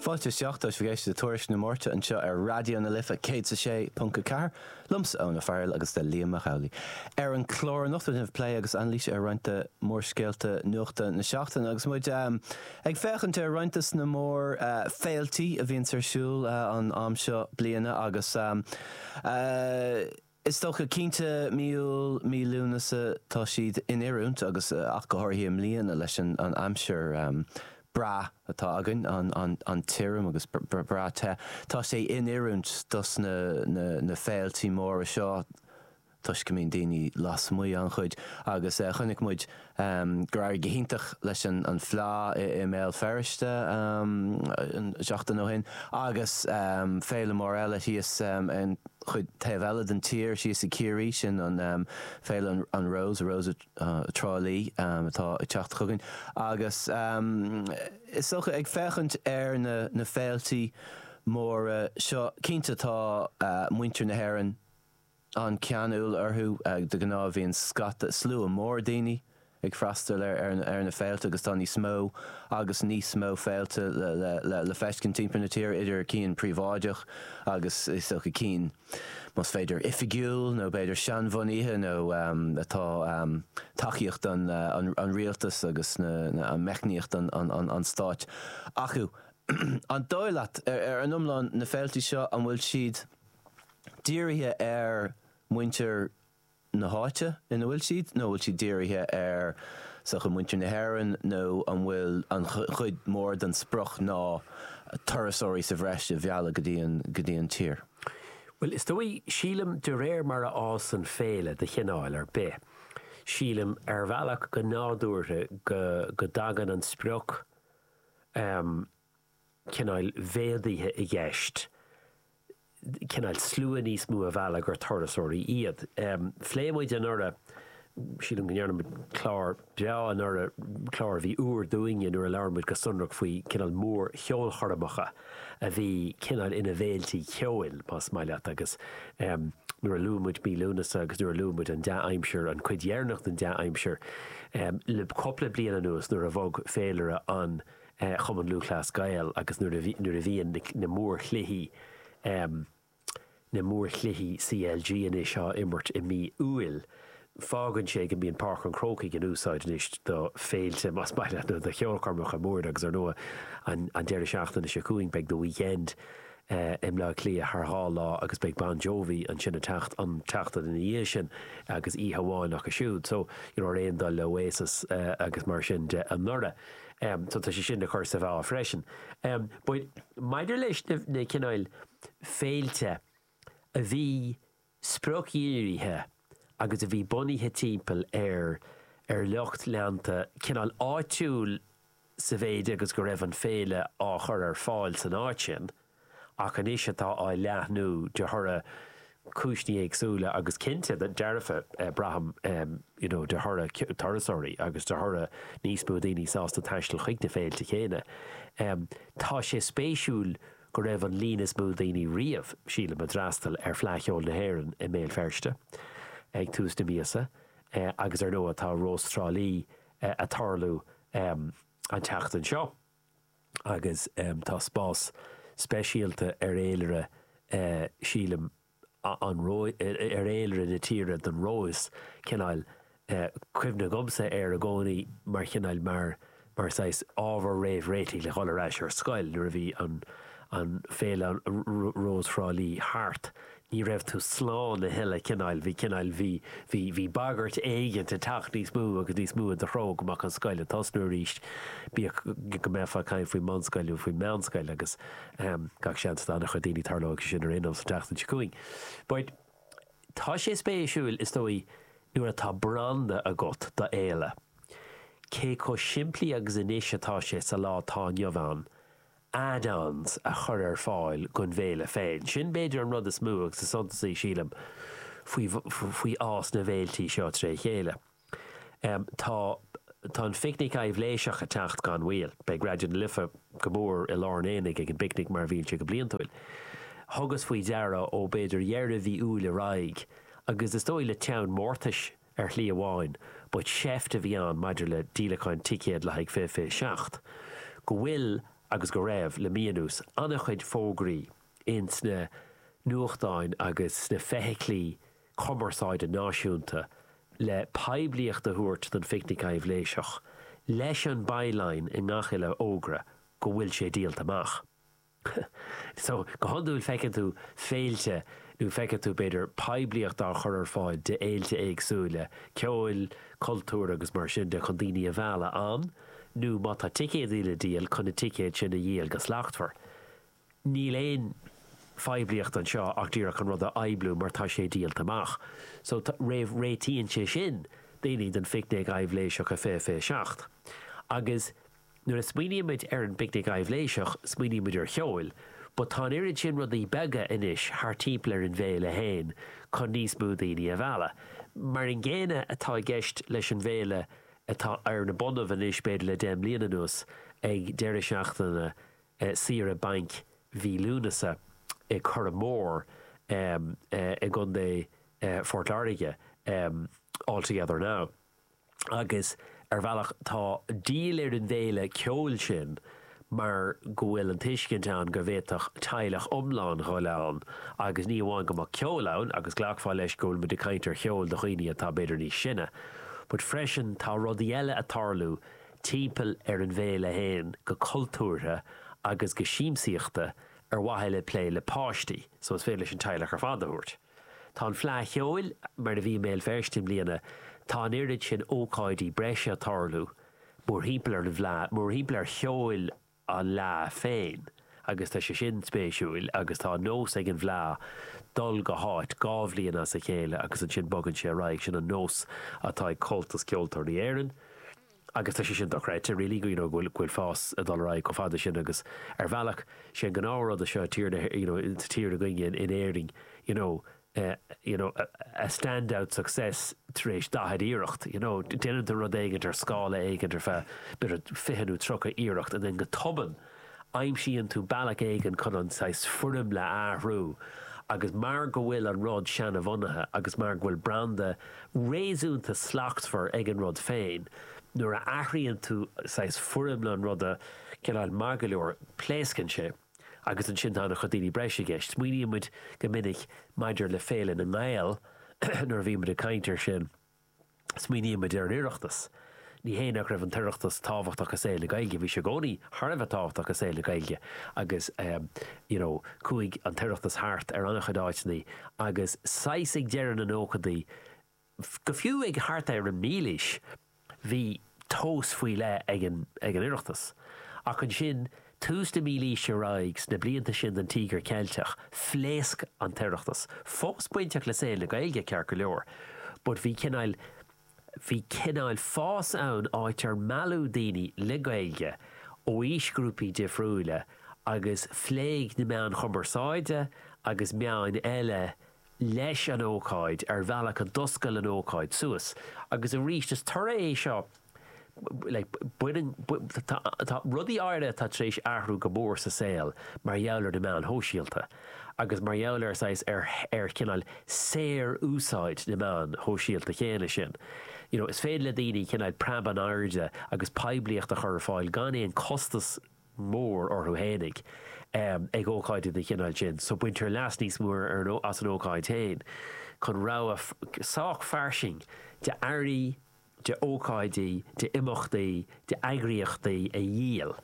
Fáilte isteach, tá sibh ag éisteacht le Tuairisc na Máirte anseo ar Raidió na Life 106.4, liomsa Eoin Ó Fearghail agus le Liam Mac Amhlaigh. Ar an clár anocht déanfaimid plé agus anailís ar roinnt de mórscéalta nuachta na seachtaine agus muid ag féachaint ar roinnt de na mórfhéiltí a bhíonns ar siúl an am seo bliana agus Is dócha, cinnte, mí Iúil, mí Lúnasa, tá siad in oiriúint agus ach go háirithe i mbliana leis an aimsir breá atá againn, an-tirim agus breá te. Tá sé in oiriúint dos na féiltí móra seo toisc go mbíonn daoine lasmuigh an-chuid agus chonaic muid gur éirigh go hiontach leis an Fleá i mBéal Feirste an seachtain ó shin agus féile mór eile thíos an chuid taobh eile den tír thíos i gCiarraí, sin an féile an Rose, Rose Trá Lí, atá ag teacht chugainn agus is dócha ag féachaint ar na féiltí móra seo cinnte tá muintir na hÉireann An-cheanúil orthu de ghnáth bhíonn scata, slua mór daoine ag freastal ar na féilte agus tá níos mó agus níos mó féilte le feiscint timpeall na tíre idir cinn príobháideach agus is dócha cinn más féidir oifigiúil nó b'fhéidir seanbhunaithe nó atá tacaíocht an rialtas agus meicníocht an stáit acu. An dóigh leat ar an iomlán na féilte seo an bhfuil siad. dírithe ar mhuintir na háite ina bhfuil siad nó an bhfuil siad dírithe ar sochaí mhuintir na hÉireann nó an bhfuil an-chuid mór den sprioc ná turasóirí sa bhreis a mhealladh go dtí an tír? Bhuel, is dóigh, sílim, de réir mar a fhásann féile de chineál ar bith, sílim, ar bhealach, go nádúrtha, go dtagann an sprioc, eh, cineál mhéadaithe i gceist, cineál slua níos mó a mhealladh gur turasóirí iad. Phléigh muid anuraidh, sílim go ndearna muid clár breá anuraidh, clár a bhí úr dúinne nuair a labhair muid go sonrach faoi cineál mórcheolchoirmeacha a bhí cineál ina bhféiltí ceoil, más maith leat, agus nuair a luaigh muid mí Lúnasa agus nuair a luaigh muid an dea-aimsir, an cuid dheireanach den dea-aimsir le cupla bliain anuas nuair a bhog féilire an Chumann Lúthchleas Gael agus nuair a bhí, nuair a bhíonn na, na mórchluichí, na mórchluichí CLG anois á imirt i mí Iúil, fágann sé go mbíonn Páirc an Chrócaigh in úsáid anois do féilte, más maith leat, nó do cheolchoirmeacha móra agus ar ndóigh an, an deireadh seachtaine seo chugainn beidh The Weeknd i mBleá Cliath thar dhá lá agus beidh Bon Jovi ansin an tseacht, an tseachtain ina dhiaidh sin agus oíche amháin acu siúd. So, you know, ar aon dul le Oasis agus mar sin de anuraidh. em, so tá sé sin le cur sa mheá freisin. Em, but maidir leis na, na cineáil féilte a bhí spriocdhírithe agus a bhí bunaithe timpeall ar, ar lucht leanta cineál áitiúil sa mhéid agus go raibh an féile á chur ar fáil san áit sin, ach anois atá á leathnú de thoradh cúinsní éagsúla agus cinnte dearfa braithim you know de thoradh turasóirí agus de thoradh níos mó daoine sásta taisteal chuig na féilte chéanna. Tá sé spéisiúil go raibh an líon is mó daoine riamh, sílim, a d'fhreastal ar Fleadh Cheoil na hÉireann i mBéal Feirste ag tús na míosa agus ar ndóigh tá Rós Trá Lí ag tarlú an tseachtain seo. agus tá spás speisialta ar fhéilire, sílim, an, ar, ar fhéilire na tíre don Róis, cineál, cuimhne agamsa air i gcónaí mar chineál, mar, mar saghas ábhar réamhréitigh le dhul ar ais ar scoil nuair a bhí an, an, féile Rós Thrá Lí thart, Ní raibh tú slán a thuilleadh, cineál, bhí cineál, bhí, bhí, bhí bagairt éigint ag teacht níos mó agus níos mó i do threo go mbeadh an scoil ag tosnú arís, bíodh go mbeifeá ag caint faoin mbunscoil nó faoin meánscoil agus gach seans do an-chuid daoine tarlóidh sé sin ar aon nós an tseachtain seo chugainn. But tá sé spéisiúil is dóigh nuair atá branda agat do d'fhéile, cé chomh simplí agus anois atá sé sa lá atá inniu ann, add-ons a chur ar fáil don bhFéile féin. Sin b'fhéidir an rud is mó agus is suntasaí, sílim, faoi fhás na bhféiltí seo tré chéile. Tá Tá an Phicnic Aibhléiseach ag teacht gan mhoill. Beidh Raidió na Life go mór i lár an aonaigh ag an bPicnic mar a bhíonn siad go bliantúil. Thugas faoi deara ó b'fhéidir dheireadh mhí Iúil ar aghaidh, agus is dóigh le teann mórtais, Ar shlí amháin, ba sheift a bhí ann maidir le díolacháin ticéad le haghaidh fiche fiche seacht, go bhfuil agus go raibh, le mí anuas, an-chuid fógraí ins na nuachtáin agus sna feithiclí cumarsáide náisiúnta le poiblíocht a thabhairt don Phicnic Aibhléiseach, leis an by-line i ngach uile fhógra go bhfuil sé díolta amach. So, go hiondúil feiceann tú féilte nó feiceann tú, b'fhéidir, poiblíocht á chur ar fáil d'fhéilte éagsúla, ceoil, cultúir agus mar sin de chun daoine a mhealladh ann nó má tá ticéadaí le díol, chun na ticéid sin a dhíol go slachtmhar. Níl aon phoiblíocht anseo ach díreach an rud a phoibliú mar tá sé díolta amach. So, réamhréitíonn sé sin daoine don phicnic aibhléiseach a fiche fiche seacht. Agus. Nuair a smaoinímid ar an bPicnic Aibhléiseach, smaoinímid ar cheol, but tá an oiread sin rudaí beaga anois thart timpeall ar an bhféile féin chun níos mó daoine a mhealladh. Mar an gcéanna atá i gceist leis an bhféile atá ar na bonnaibh anois b'fhéidir le deich mbliana anuas, ag deireadh seachtaine saoire bainc mhí Lúnasa i Curraghmore i gContae Phort Láirge, All Together Now. agus ar bhealach tá díol ar an bhféile ceoil sin mar go bhfuil an tuiscint ann go bhféadfadh teaghlach iomlán dhul ann agus ní amháin go mbeadh ceol ann agus glacfá leis go bhfuil muid ag caint ar cheol do dhaoine atá b'fhéidir níos sine but freisin tá rudaí eile a' tarlú timpeall ar an bhféile fhéin go cultúrtha agus go siamsaíochta ar mhaithe le plé le páistí so is féidir leis an teaghlach ar fad a thabhairt. Tá an Fleadh Cheoil mar a bhí i mBéal Feirste i mbliana, tá an oiread sin ócáidí breise ag tarlú mórthimpeall ar an bhFleadh, mórthimpeall ar cheol an Fhleadh féin agus tá sé sin spéisiúil agus tá an nós ag an bhFleadh dul go háit dhá bhliain as a chéile agus ansin bogann sé ar aghaidh, sin an nós atá ag Comhaltas Ceoltóirí Éireann. agus tá sé sin dochreidte really go bhfuil fás ag dul ar aghaidh chomh fada sin agus ar bhealach sé an gnáthrud seo tír na you know sa tír againne in in Éirinn you know eh, you know a, a standout success tar éis 40 iarracht you know déanann tú rud éigin ar scála éigin ar feadh b'fhéidir 20 nó 30 iarracht and then go tobann Aimsíonn tú bealach éigin chun an saghas foirmle a athrú agus mar go bhfuil an rud seanbhunaithe agus mar go bhfuil branda réasúnta slachtmhar ag an rud féin, nuair a athraíonn tú saghas foirmle an ruda cineál maith go leor, pléascann sé agus ansin tá an-chuid daoine breise i gceist. Smaoiníonn muid go minic maidir le Féile na nGael nuair a bhíonn muid ag caint ar sin. Smaoinímid ar an Oireachtas. Ní hé nach raibh an tOireachtas tábhachtach i saol na Gaeilge, bhí sé i gcónaí thar a bheith tábhachtach i saol na Gaeilge agus you know chuaigh an tOireachtas thart ar an-chuid áiteanna agus saghas ag deireadh na nóchadaí go fiú thart ar an mílaois bhí tomhas faoi leith ag an Oireachtas. Ach ansin, tús na mílaoise ar aghaidh, sna blianta sin den Tíogar Ceilteach, phléasc an tOireachtas. Fós bainteach le saol na Gaeilge, ceart go leor, but bhí cineál, bhí cineál fás ann áit ar mealladh daoine le Gaeilge ó aoisghrúpaí difriúla agus phléigh na meáin chumarsáide agus meáin eile leis an ócáid ar bhealach a d'oscail an ócáid suas agus arís is toradh é seo tá rudaí áirithe atá tar éis athrú go mór sa saol mar gheall ar na meáin shóisialta agus mar gheall ar saghas ar ar cineál saor úsáid na meáin shóisialta chéanna sin you know is féidir le daoine cineál preab in airde agus poiblíocht a chur ar fáil gan aon costas mór orthu fhéinig ag ócáidí den chineál sin so baintear leas níos mó as an ócáid féin chun rogha sách fairsing de earraí, de ócáidí, de imeachtaí, de eagraíochtaí a dhíol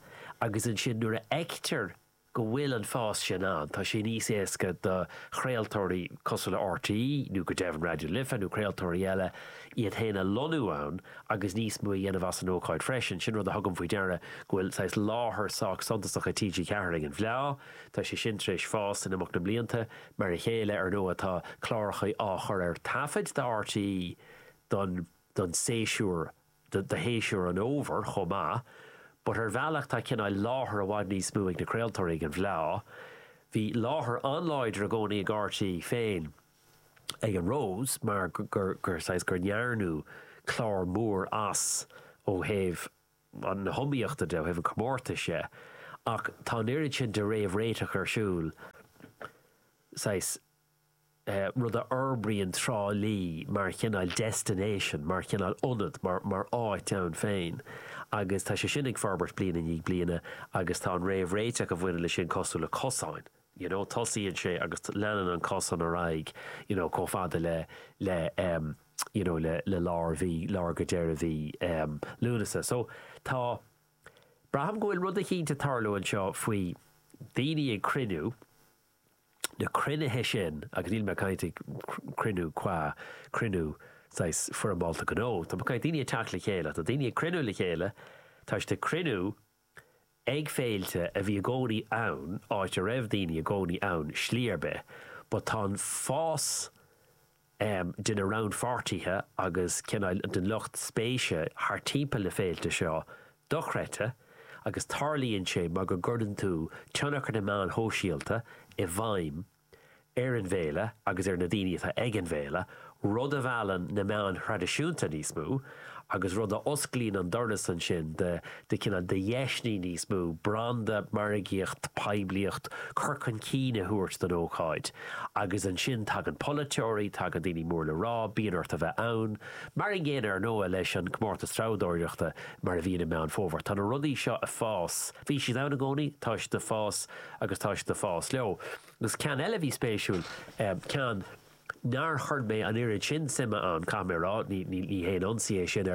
agus ansin nuair a fheictear go bhfuil an fás sin ann tá sé níos éasca do chraoltóirí cosúil le RTÉ nó go deimhin Raidió Life nó craoltóirí eile iad féin a lonnú ann agus níos mó a dhéanamh as an ócáid freisin. Sin rud a thugaim faoi deara go bhfuil saghas láthair sách suntasach ag TG4 ag an bhFleá. Tá sé sin tar éis fás in imeacht na mblianta. Mar a chéile, ar ndóigh, tá cláracha á chur ar taifead do RTÉ don don séasúr do do shéasúr an Fhómhair chomh maith. But ar bhealach tá cineál láthair i bhfad níos mó ag na craoltóirí ag an bhFleá. Bhí láthair an-láidir i gcónaí ag RTÉ féin. ag an Rose mar gur saghas gur ndearnadh clár mór as ó thaobh na hiomaíochta de, ó thaobh an chomórtais dhe ach tá an oiread sin de réamhréiteach ar siúl saghas rud a fhorbraíonn Trá Lí mar chineál destination, mar chineál ionad, mar áit ann féin agus tá sé sin ag forbairt bliain i ndiaidh bliana agus tá an réamhréiteach a bhaineann leis sin cosúil le cosáin. you know, tosaíonn sé agus leanann an cosán ar aghaidh, you know, chomh fada le, le, um, you know, le, le lár mhí, lár go deireadh mhí, um, Lúnasa. So, tá, braithim go bhfuil rud eicínt ag tarlú anseo faoi daoine ag cruinniú, na cruinnithe sin, agus níl mé ag caint ag cruinniú cua, cruinniú saghas foirmeálta gnó, tá mé ag caint daoine ag teacht le chéile, tá daoine ag cruinniú le chéile, tá siad ag cruinniú, Ag féilte a bhí i gcónaí ann, áit a raibh daoine i gcónaí ann slí ar bith, but tá an fás de na rannpháirtithe agus cineál den lucht spéise thart timpeall ar na féilte seo dochreidte agus tarlaíonn sé mar go gcuireann tú tionchar na meáin shóisialta i bhfeidhm ar an bhféile agus ar na daoine atá ag an bhféile, rud a mheallann na meáin thraidisiúnta níos mó agus rud a osclaíonn an doras ansin do, do cineál, do dheiseanna níos mó, branda, margaíocht, poiblíocht, cur chun cinn a thabhairt don ócáid. Agus ansin tagann polaiteoirí, tagann daoine mór le rá, bíonn ort a bheith ann. Mar an gcéanna, ar ndóigh, leis an gComórtas Treabhdóireachta mar a bhíonn i Meán Fómhair. Tá na rudaí seo ag fás, bhí siad ann i gcónaí, tá siad ag fás, agus tá siad ag fás leo. Agus ceann eile a bhí spéisiúil, ceann nár chuir mé an oiread sin suime ann, caithfidh mé a rá, ní haon ionsaí é sin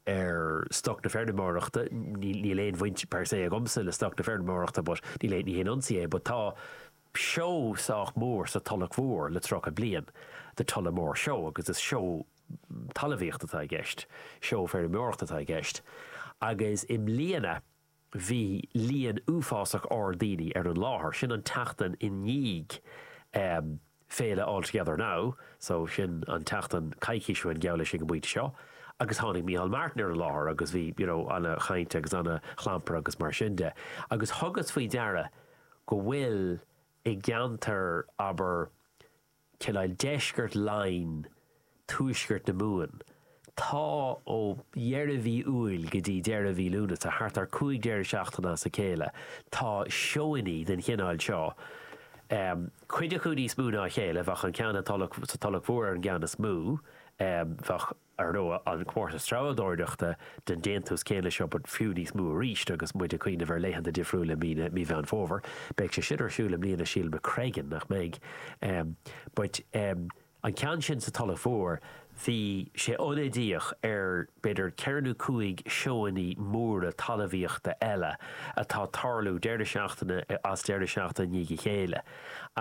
ar stoc na feirmeoireachta, níl aon bhaint per se agamsa le stoc na feirmeoireachta but ní haon ionsaí é, but tá seó sách mór sa Tulach Mhór le tríocha bliain, The Tullamore Show, agus is seó talamhaíocht atá i gceist, seó feirmeoireacht atá i gceist agus i mbliana bhí líon uafásach ard daoine ar an láthair. Sin an tseachtain i ndiaidh féile All Together Now so sin an tseachtain coicís ó shin geall leis ag an bpointe seo agus tháinig Micheál Martin ar an láthair agus bhí you know ana chaint agus ana chlampar agus mar sin de agus thugas faoi deara go bhfuil i gceantar abair cineál, deisceart Laighin, tuaisceart na Mumhan. Tá ó dheireadh mhí Iúil go dtí deireadh mhí Lúnasa, thart ar 5 deireadh seachtaine as a chéile, tá seónní den chineáil seo. Cuid acu níos mó ná a chéile, bheadh an ceann sa Tulach Mhór ar an gceann is mó, bheadh. Ar ndóigh, an comórtas treabhdóireachta den déantús céanna seo, but fiú níos mó arís agus muid ag cuimhneamh ar laethanta difriúla i mí na, mí Mheán Fómhair. Beidh sé sin ar siúl i mbliana sílim, i Creggan, nach mbeidh? Em, but em, an ceann sin sa Tulach Mhór, bhí sé ionadaíoch ar b'fhéidir ceithre nó cúig seónní móra talamhaíochta eile atá tarlú deireadh seachtaine as deireadh seachtaine i ndiaidh a chéile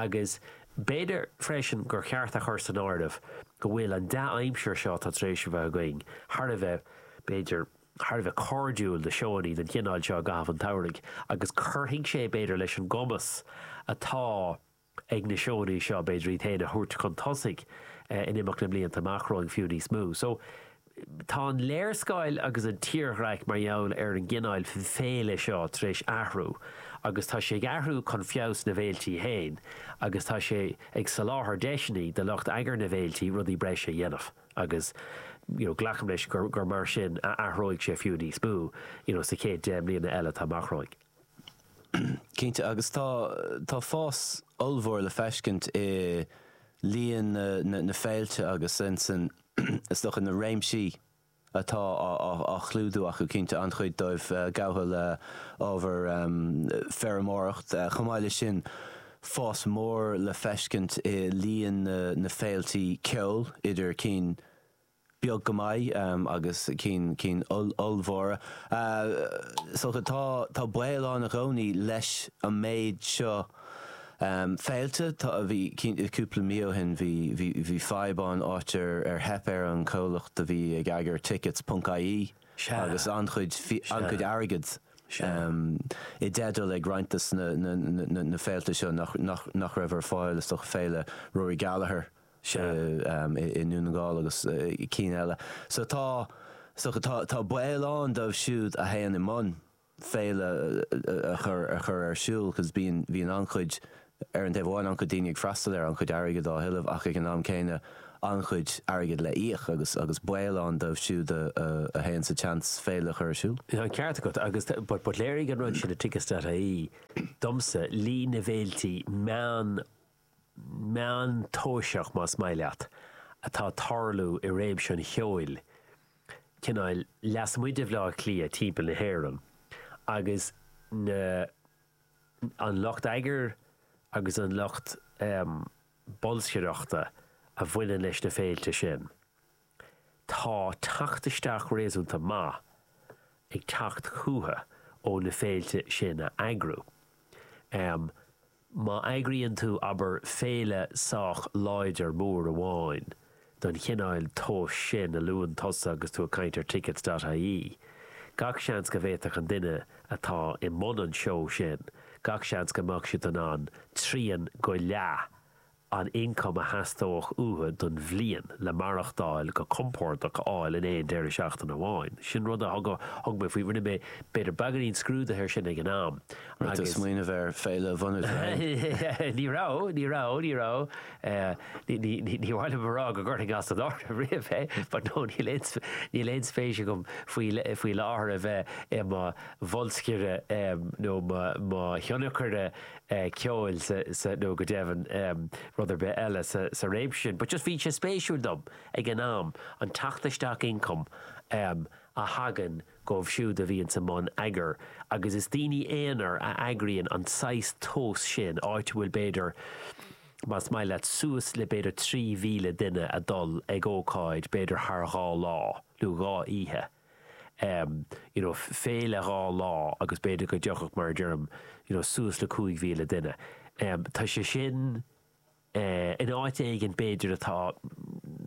agus B'fhéidir freisin gur cheart a chur san áireamh go bhfuil an dea-aimsir seo atá tar éis a bheith againn thar a bheith, b'fhéidir, thar a bheith cairdiúil do sheónní den chineál seo i gcaitheamh an tsamhraidh agus cuirfidh sé, b'fhéidir, leis an gcumas atá ag na seónní seo, b'fhéidir, iad féin a thabhairt chun tosaigh in imeacht na mblianta amach romhainn fiú níos mó. So. Tá an léarscáil agus an tírdhreach mar gheall ar an gcineáil féile seo tar éis athrú agus tá sé ag athrú chun feabhas na bhféiltí féin agus tá sé ag soláthar deiseanna do lucht eagair na bhféiltí rudaí breise a dhéanamh agus you know glacaim leis gur gur mar sin a athróidh sé fiú níos mó you know sa chéad 10 mbliana eile atá amach romhainn. Cinnte agus tá tá fás ollmhór le feiscint i líon na na na féilte agus insan is dócha na réimsí atá á chlúdú acu, cinnte an-chuid dóibh gafa le ábhar feirmeoireacht. Chomh maith leis sin fás mór le feiscint i líon na féiltí ceoil idir cinn beag go maith agus cinn ollmhóra. Is dócha tá tá baol ann i gcónaí leis an méid seo, Em féilte tá bhí cinnte cúpla mí ó shin bhí bhí bhí fadhb ann áit ar ar theip ar an gcomhlacht a bhí ag eagar tickets ponc ie Sea. agus an-chuid fi an-chuid airgead Sea. em i dteideal ag roinnt de na na na na na féilte seo nach nach nach raibh ar fáil is dócha féile Rory Gallagher Sea. i em i i nDún na nGall agus eh cinn eile so tá so tá tá baol ann dóibh siúd a théann i mbun féile a chur ar siúl cos bíonn an-chuid, ar an taobh amháin, an-chuid daoine ag freastal air, an-chuid airgead á thuilleamh ach ag an am céanna an-chuid airgead le híoc agus agus baol ann dóibh siúd a théann sa tseans féile a chur ar siúl. Tá an ceart agat agus but léirigh an rud sin le Tickets.ie domsa líon na bhféilte meán meántoiseach más maith leat, atá ag tarlú i réimse an cheoil, cineál lasmuigh de Bhleá Cliath timpeall na hÉireann, agus na, an lucht eagair agus an lucht bolscaireachta a bhaineann leis na féilte sin. Tá teacht isteach réasúnta maith ag teacht chucu ó na féilte sin a eagrú. Má eagraíonn tú, abair, féile sách láidir mór amháin den chineál tomhais sin a luann tusa agus tú ag caint ar tickets.ie, gach seans go bhféadfadh an duine atá i mbun an seó sin, gach seans go mbeadh siad in ann trian go leath an ioncam a theastódh uathu don bhliain le maireachtáil go compordach a fháil in aon deireadh seachtaine amháin. Sin rud a thug mé faoi, rinne mé b'fhéidir beagainín scrúdaithe ar sin ag an am agus. Rud a smaoineamh air féile a bhunú tar éin. Ní raibh, ní raibh, ní raibh, ní mhaith liom a rá go gcuirfinn as an áireamh riamh é but no níl aon spéis agam faoi láthair a bheith i mo bholscaire nó mo thionscnóir eh, ceoil sa, sa, nó go deimhin, em, rud ar bith eile sa, sa réimse sin. But just bhí sé spéisiúil dom ag an am an teacht isteach ioncaim em, a thagann dhóibh siúd a bhíonns i mbun eagair agus is daoine aonair a eagraíonn an saghas tomhas sin, áit a bhfuil b'fhéidir, más maith leat, suas le b'fhéidir 3,000 duine a dhul ag ócáid b'fhéidir thar dhá lá nó dhá oíche. you know, féile dhá lá agus b'fhéidir go dtiocfadh, mar a deirim, you know, suas le 5,000 duine. Tá sé sin in áit éigin b'fhéidir atá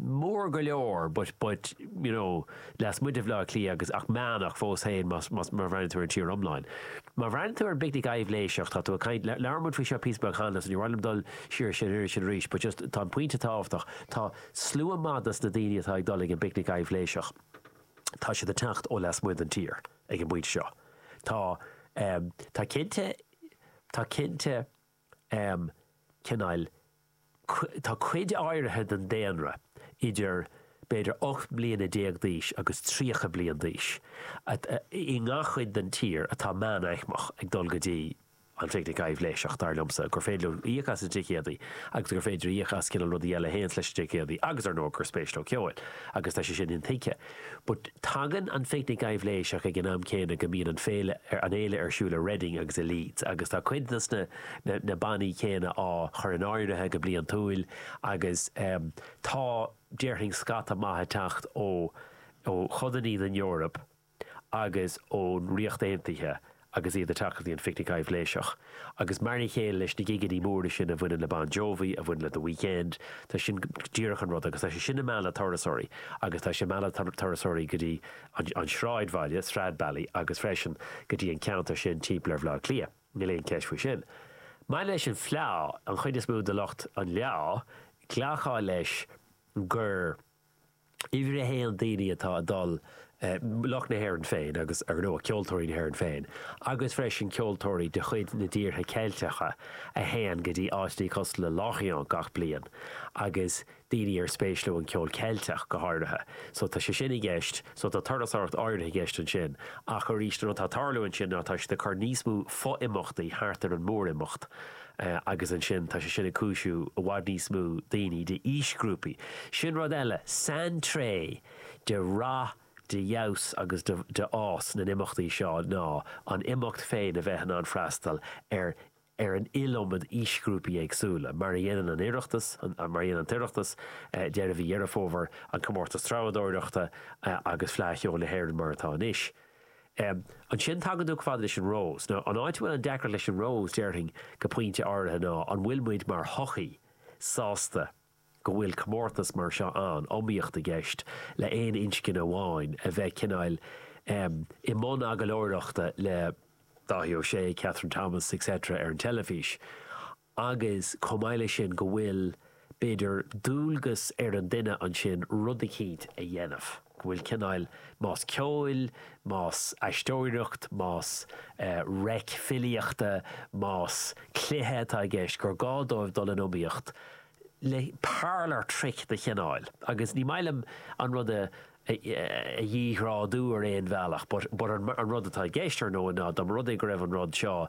mór go leor but, but, you know, lasmuigh de Bhaile Átha Cliath agus ach meánach fós féin más, más, má bhreathnaíonn tú ar an tír iomlán. Má bhreathnaíonn tú ar an bpicnic aibhléiseach, tá tú ag caint, labhair muid faoi seo píosa beag cheana so ní mhaith liom dul siar air sin arís but just tá an pointe tábhachtach, tá slua madaidh sna daoine atá ag dul ag an bpicnic aibhléiseach. tá siad ag teacht ó lasmuigh den tír ag an bpointe seo. Tá, tá cinnte, tá cinnte cineál, tá cuid áirithe den daonra idir b'fhéidir ocht mbliana déag d'aois agus tríocha bliain d'aois i ngach chuid den tír atá meánaicmeach ag dul go dtí an phicnic aibhléiseach, dar liomsa, gur féidir leo íoc as na ticéadaí agus gur féidir íoc as cineal rudaí eile a théanns leis na ticéadaí agus, ar ndóigh, gur spéis leo ceoil agus tá sé sin intuigthe. But tagann an phicnic aibhléiseach ag an am céanna go mbíonn an féile, an fhéile ar siúl i Reading agus i Leeds agus tá cuid dos na, na bannaí céanna á chur in áirithe go bliantúil agus tá, déarfainn, scata maith ag teacht ó, ó chodanna den Eoraip. agus ón Ríocht Aontaithe agus iad ag teacht go dtí an Phicnic Aibhléiseach. Agus mar a chéile leis na gigeanna móra sin a bhaineann le Bon Jovi, a bhaineann le The Weekend, tá sin díreach an rud agus tá sé sin ag mealladh turasóirí agus tá sé ag mealladh turasóirí go dtí an sráidbhaile, Stradbally, agus freisin go dtí an ceantar sin timpeall ar Bhaile Átha Cliath, níl aon cheist faoi sin. Maidir leis an fleá, an chuid is mó de lucht an fhleá, ghlacfá leis gur. Uimhir a haon, daoine atá ag dul, lucht na hÉireann féin agus, ar ndóigh, ceoltóirí na hÉireann féin, agus freisin ceoltóirí de chuid na dtíortha Ceilteacha a théann go dtí áiteanna cosúil le Lorient gach bliain agus daoine ar spéis leo an ceol Ceilteach go háirithe. So tá sé sin i gceist, so tá turasóireacht áirithe i gceist ansin ach arís an rud atá ag tarlú ansin ná tá siad ag cur níos mó fo-imeachtaí thart ar an mór-imeacht, agus ansin tá sé sin ag cúisiú i bhfad níos mó daoine d'aoisghrúpaí. Sin rud eile, saintréith de rath, de fheabhas agus de de fhás na n-imeachtaí seo ná an imeacht féin a bheith in ann freastal ar ar an iliomad aoisghrúpaí éagsúla, mar a dhéanann an Oireachtas, mar a dhéanann an tOireachtas deireadh mhí Dheireadh Fómhair, an Comórtas Treabhadóireachta agus Fleadh Cheoil na hÉireann mar atá anois. Ansin tagann tú chomh fada leis an Rose. Now, an áit a bhfuil an deacracht leis an Rose, déarfainn go pointe áirithe ná an bhfuil muid mar shochaí sásta go bhfuil comórtas mar seo ann, iomaíocht i gceist le aon inscne amháin a bheith cineáil i mbun agallóireachta le Dáithí Ó Sé, Catherine Thomas, etc. ar an teilifís. agus chomh maith le sin go bhfuil, b'fhéidir, dualgas ar an duine ansin rud eicínt a dhéanamh, go bhfuil cineáil, más ceoil, más aisteoireacht, más reic filíochta, más cluiche atá i gceist, gur gá dóibh dul in iomaíocht le parlour trick de chineáil agus ní maith liom an rud a dhíghrádú ar aon bhealach but an rud atá i gceist, ar ndóigh, ná dá mba rud é go raibh an rud seo.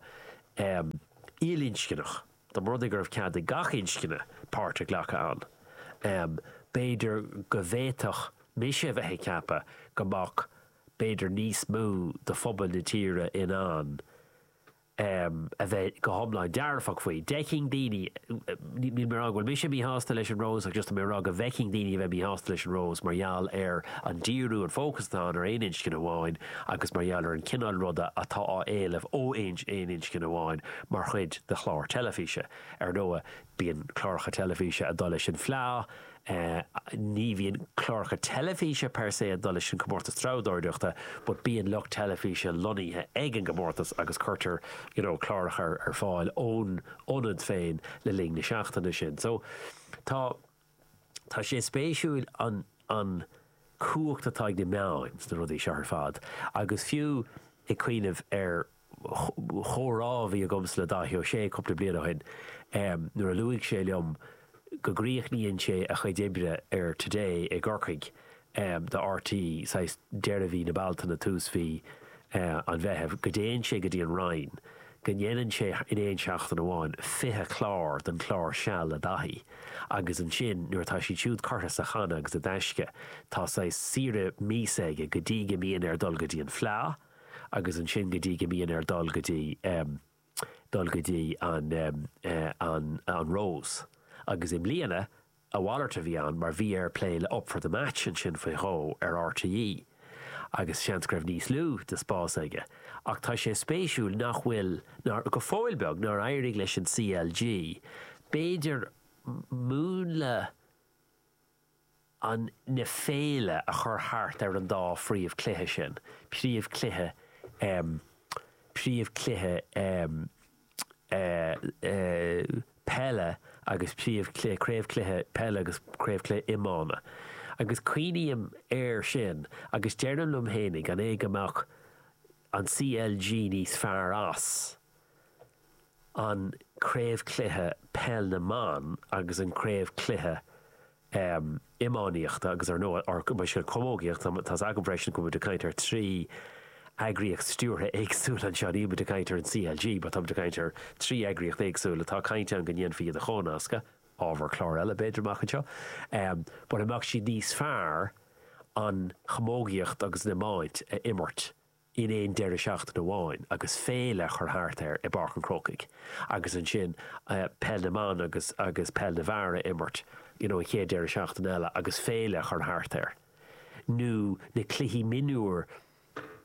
ilinscneach, dá mba rud é go raibh cead ag gach inscne páirt a ghlacadh ann, b'fhéidir go bhféadfadh mise a bheith ag ceapadh go mbeadh b'fhéidir níos mó de phobal na tíre in ann a bheith go hiomlán dearfach faoi. D'fheicfinn daoine, níl mé ag rá go bhfuil mise míshásta leis an Rós ach just tá mé ag rá go bhfeicfinn daoine a bheith míshásta leis an Rós mar gheall ar an díriú, an fócas atá ann ar aon inscne amháin. agus mar gheall ar an gcineál ruda atá á éileamh ó aon inscne amháin mar chuid de chlár teilifíse. Ar ndóigh, bíonn cláracha teilifíse ag dul leis an bhFleá, ní bhíonn cláracha teilifíse per se ag dul leis an Comórtas Treabhdóireachta but bíonn lucht teilifíse lonnaithe ag an gComórtas agus cuirtear you know cláracha ar fáil ón ionad féin le linn na seachtaine sin. So, tá. Tá sé spéisiúil an an cumhacht atá ag na meáin sna rudaí seo ar fad agus fiú ag cuimhneamh ar chomhrá a bhí agamsa le Dáithí Ó Sé cúpla bliain ó shin nuair a luaigh sé liom go gcríochnaíonn sé a chuid oibre ar Today i gCorcaigh em, do RTÉ, saghas, deireadh mhí na Bealtaine, tús mhí, eh, an Mheithimh, go dtéann sé go dtí an Rinn, go ndéanann sé, in aon seachtain amháin, fiche clár den chlár Seal le Dáithí agus ansin nuair atá siad siúd curtha sa channa agus i dtaisce, tá saghas saoire míosa aige go dtí go mbíonn air dul go dtí an Fleá agus ansin go dtí go mbíonn air dul go dtí, em. dul go dtí an Rose agus i mbliana a mhalairt a bhí ann mar bhí air plé le Up for the Match ansin faoi dhó ar RTÉ agus seans go raibh níos lú de spás aige ach tá sé spéisiúil nach bhfuil, go fóill beag, nár éirigh leis an CLG b'fhéidir múnla. na féile a chur thart ar an dá phríomhchluiche sin, príomhchluiche ehm príomhchluiche ehm eh eh peile agus príomhchluiche craobhchluiche peile agus craobhchluiche iomána. Agus cuimhním air sin agus deirim liom fhéinig an é go mbeadh an CLG níos fearr as an craobhchluiche Peil na mBan agus an craobhchluiche iománaíochta agus ar ndóigh an chamógaíocht. Tá's agam freisin go bhfuil muid ag caint ar trí eagraíocht stiúrtha éagsúil anseo. Níl muid ag caint ar an CLG mar tá muid ag caint ar trí eagraíocht éagsúil atá caint ann go ndéanfaí iad a chomhnascadh, ábhar cláir eile b'fhéidir amach anseo, an mbeadh siad níos fearr an chamógaíocht agus an iomáint a imirt in aon deireadh seachtaine amháin agus féile a chur thart air i bPáirc an Chrócaigh agus ansin Peil na mBan agus agus Peil na bhFear a imirt you know an chéad deireadh seachtaine eile agus féile a chur thart air nó na cluichí mionúir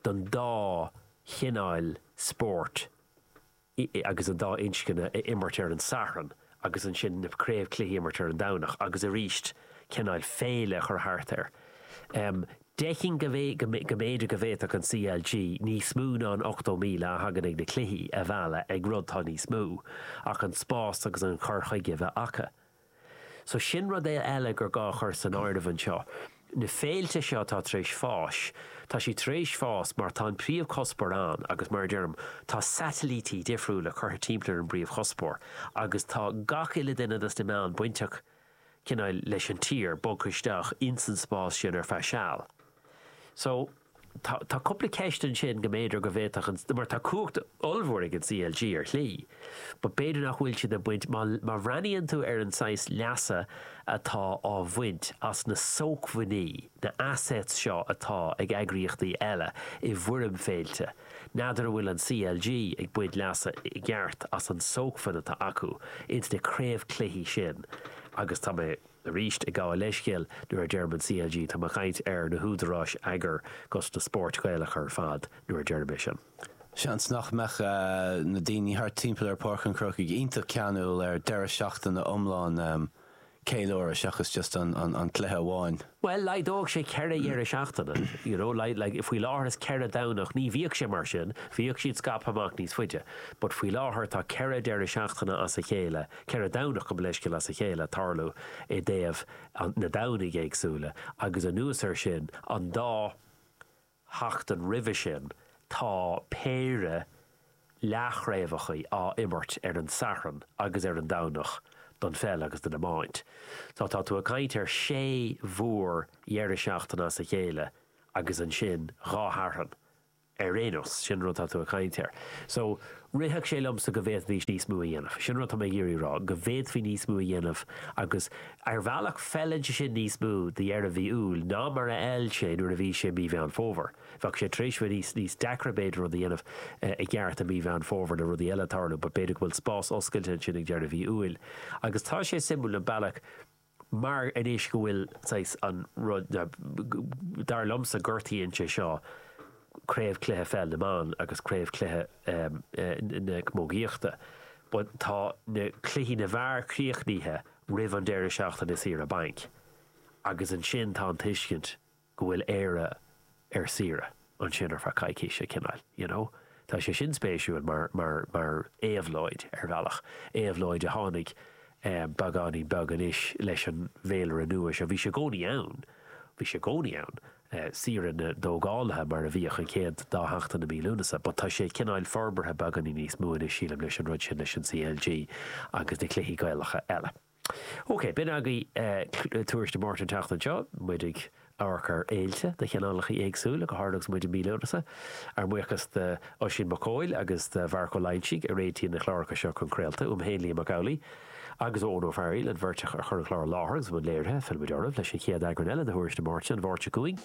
don dá chineáil spóirt i agus an dá inscne a imirt ar an Satharn agus ansin na craobhchluichí a imirt ar an Domhnach agus arís cineáil féile a chur thart air. Déarfainn go mb'fhéidir go bhféadfadh an CLG níos mó ná an 80,000 a thagann ag na cluichí a mhealladh ag rud atá níos mó ach an spás agus an cur chuige a bheith acu. So sin rud eile gur gá a chur san áireamh anseo. Na féilte seo atá tar éis fás, tá siad tar éis fás mar tá an príomh cuspóir ann agus mar a deirim, tá satailítí difriúla curtha timpeall ar an bpríomh chuspóir agus tá gach uile duine dos na meáin bainteach cineál leis an tír, bogtha isteach ins an spás sin ar feadh seal. So. Tá cúpla ceist ansin go mb'fhéidir go bhféadfadh an, mar tá cumhacht ollmhór ag an CLG ar shlí, but b'fhéidir nach bhfuil siad ag baint, má bhreathnaíonn tú ar an saghas leasa atá á bhaint as na sócmhainní, na assets seo atá ag eagraíochtaí eile i bhfoirm féilte, n'fheadar an bhfuil an CLG ag baint leasa i gceart as an sócmhainn atá acu ins na craobhchluichí sin agus tá mé Arís ag gabháil leithscéil nuair a deirim an CLG tá mé ag caint ar na húdaráis eagair dos na spóirt Ghaelacha ar fad nuair a deirim é sin. Seans nach mbeadh na daoine thart timpeall ar Páirc an Chrócaigh iontach ceanúil ar deireadh seachtaine iomlán ceiliúrtha seachas just an cluiche amháin. Bhuel laghdódh sé ceithre dheireadh seachtaine, you know like faoi láthair is ceithre Domhnach, ní bhíodh sé mar sin, bhíodh siad scaipthe amach níos faide but faoi láthair tá ceithre deireadh seachtaine as a chéile, Ceithre Domhnach gabh mo leithscéal as a chéile ag tarlú i dtaobh na Domhnaigh éagsúla agus anuas ar sin an dá sheachtain roimhe sin tá péire leathchraobhachaí á imirt ar an Satharn agus ar an Domhnach don pheil agus don iomáint. So tá tú ag caint ar sé mhór dheireadh seachtaine as a chéile agus ansin dhá Shatharn. ar aon nós, sin an rud atá tú ag caint air. So, rithfeadh sé liomsa go bhféadfaí níos mó a dhéanamh. Sin an rud atá mé ag iarraidh a rá, go bhféadfaí níos mó a dhéanamh agus, ar bhealach, feileann sé sin níos mó do dheireadh mhí Iúil ná mar a fheil sé nuair a bhí sé mí Mheán Fómhair. Bheadh sé tar éis a bheith níos, níos deacra, b'fhéidir, rud a dhéanamh i gceart i mí Mheán Fómhair le rudaí eile ag tarlú but b'fhéidir go bhfuil spás oscailte ansin ag deireadh mhí Iúil. Agus tá sé suimiúil an bealach, Mar anois go bhfuil saghas an rud, nó dar liomsa gortaíonn sé seo Craobh Cluiche Pheil na mBan agus Craobh Cluiche na Camógaíochta, but tá na cluichí na bhfear críochnaithe roimh an deireadh seachtaine saoire bainc agus ansin tá an tuiscint go bhfuil Éire ar saoire ansin ar feadh coicíse, cineál, you know. Tá sé sin spéisiúil mar, mar, mar éabhlóid, ar bhealach. Éabhlóid a tháinig beagáinín beag anois leis an bhféilire nua seo. Bhí sé i gcónaí ann, bhí sé i gcónaí ann, saoire na dtógálaithe mar a bhíodh an chéad dá sheachtain i mí Lúnasa, but tá sé cineál forbartha beagáinín níos mó anois, sílim, leis an rud sin, leis an CLG agus na cluichí Gaelacha eile. OK, b'in agaibh Tuairisc na Máirte an tseachtain seo, muid ag amharc ar fhéilte de chineálacha éagsúla, go háirithe agus muid i mí Lúnasa. Ár mbuíochas d'Oisín Mac Cóil agus do Mharc Ó Loingsigh a réitíonn na cláracha seo chun craolta, uaim féin Liam Mac Amhlaigh agus ó Eoin Ó Fearaíl, an bheirt a chuir an clár i láthair agus i mbun léirithe. Fillfimid oraibh leis an chéad eagrán eile de Thuairisc na Máirte an Mháirt seo chugainn.